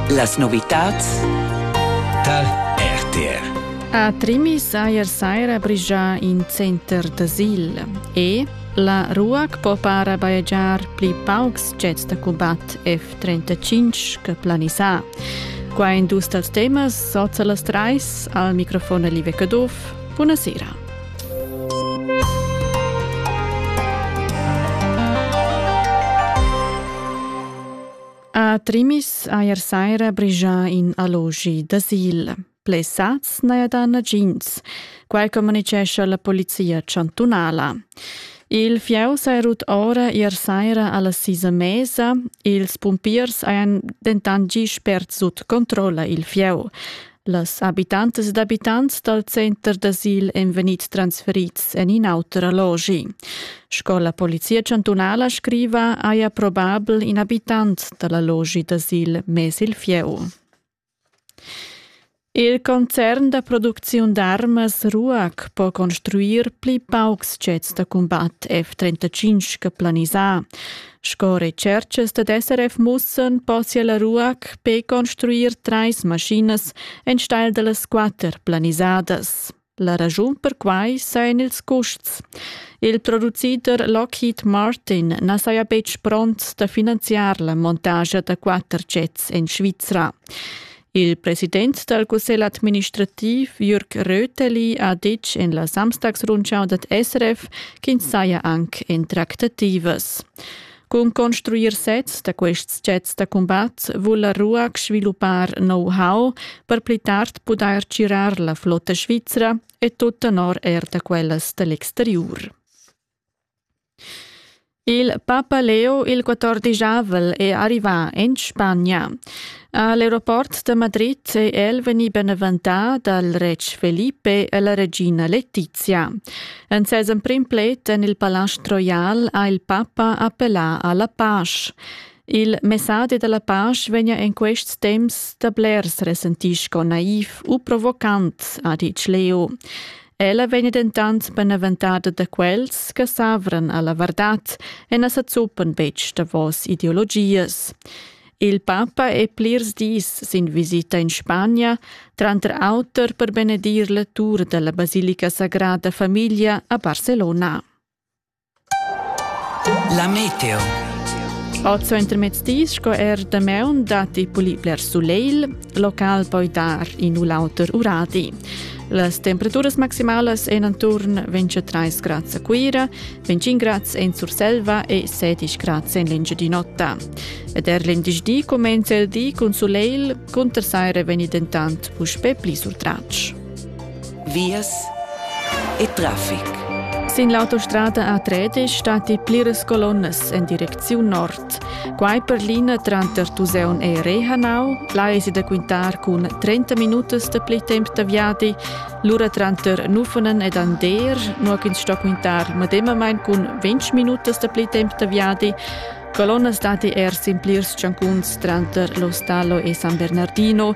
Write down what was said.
Las novitads tar RTR. A Trimi saja saira brigia in center d'asil e la RUAC po para bajegiar pli paucs jets da combat F-35 che planisà. Qua in dus dals temas, sozza las trais, al microfon Live Caduff. Buonasera. A Trimis eir saira brigia in allogi d'asil. Blessats n'haja da nagins, quai communicescha la polizia chantunala. Il fieu s'è rut ora ier saira alla sisa mesa. Ils pumpiers hajan dentant gì spert sut controlla il fieu. Las habitantas ed abitants dal center d'asil èn vegnids transferids en in auter allogi. Sco la polizia chantunala scriva, haja probabel in abitant da l'allogi d'asil mess il fieu. Il concern da producziun d'armas RUAC po construir pli paucs jets da combat F-35 che planisà. Sco retscherchas dad SRF mussan possia la RUAC per construir trais maschinas enstagl da las quatter planisadas. La raschun per quai sajan ils custs. Il producider Lockheed Martin na saja betg pront da finanziar la montagia da quatter jets en Svizra. Il president dal cussegl administrativ Jürg Röteli ha ditg en la Samstagsrundschau dad SRF ch'ins saja anc en tractativas. Cun construir sezs da quests jets da cumbat vul la RUAC sviluppar know-how per pli tard pudair tgirar la flotta svizra e tut tenor er da quellas da l'exteriur. Il papa Leo il quattordisavel è arrivà en Spagna. A l'aeroport da Madrid è el vegnì beneventà dal retg Felipe e la regina Letizia. En ses emprim pled en il Palast Royal ha il papa appellà a la pace. Il messadi da la pace vegnia en quests temps da blers resentì sco naiv u provocant, ha ditg Leo. Ella vegn dentant benaventada da quels che s'avran a la vardad e na sa zuppan betg davos ideologias. Il papa è plirs dis sin visita in Spagna, tranter auter per benedir la tur da la basilica sagrada famiglia a Barcelona. La meteo. Oz intermezdi sco er damaun datti pli bler sulegl, local poi dar in u l'auter uradi. Las temperaturas maximalas en atturn 23 grads a Cuira, 25 grads en Surselva e 16 grads en l'Engiadin'Ota. Ed er venerdì cumenza il di cun sulegl, cunter saira vegni dentant puspè pli surtratg. vias e traffic. Sin l'autostrada A3 stati pliras colonnas en direcziun nord. Quai per linea tranter Tuseun e Rehanau. Là è da quintar cun 30 minutas da pli temp da viadi. Lura tranter Nufunen ed Ander, nua ch'ins sto quintar medemamain cun 20 minutas da pli temp da viadi. Colonnas dati er sin plirs tschancuns tranter Lo Stallo e San Bernardino.